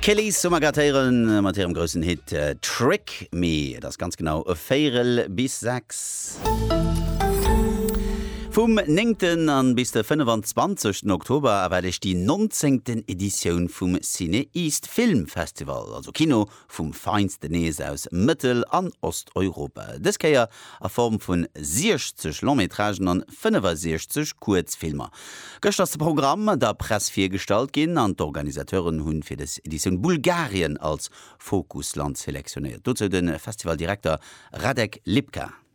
D'Kellys hu mer grad héieren mat hirem groussen Hit Trick Me. Et ass ganz genau e Véirel bis sechs. Vum néngten an bis de 25 Oktober erwaart Iech déi 19. Editioun vum CinEast Film Festival, also Kino Vum Feinsten nees aus Mëttel an Osteuropa. Dës Kéier a Form vun 60 Long-Métragen an 65 Kuerzfilmer. Gëschter ass de Programm der Press virgestallt ginn an d'Organisateuren hunn fir dës Editioun Bulgarien als Fokusland selektionéiert. Dozou de Festivaldirekter Radek Lipka.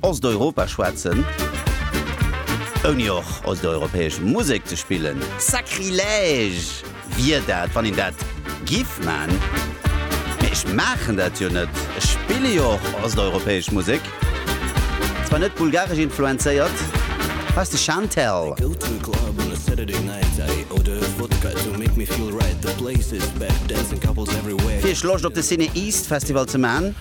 Osteuropa schwätzen, ouni och osteuropäesch Musek ze spillen. Sacrilège wier dat, wann een dat giff man. Mee ech maachen dat jo net. Ech spille jo och osteuropäesch Musek, zwar net bulgaresch influenzéiert. Hei ass de Chantel. Fir iech Loscht op de Cine East Festival ze man.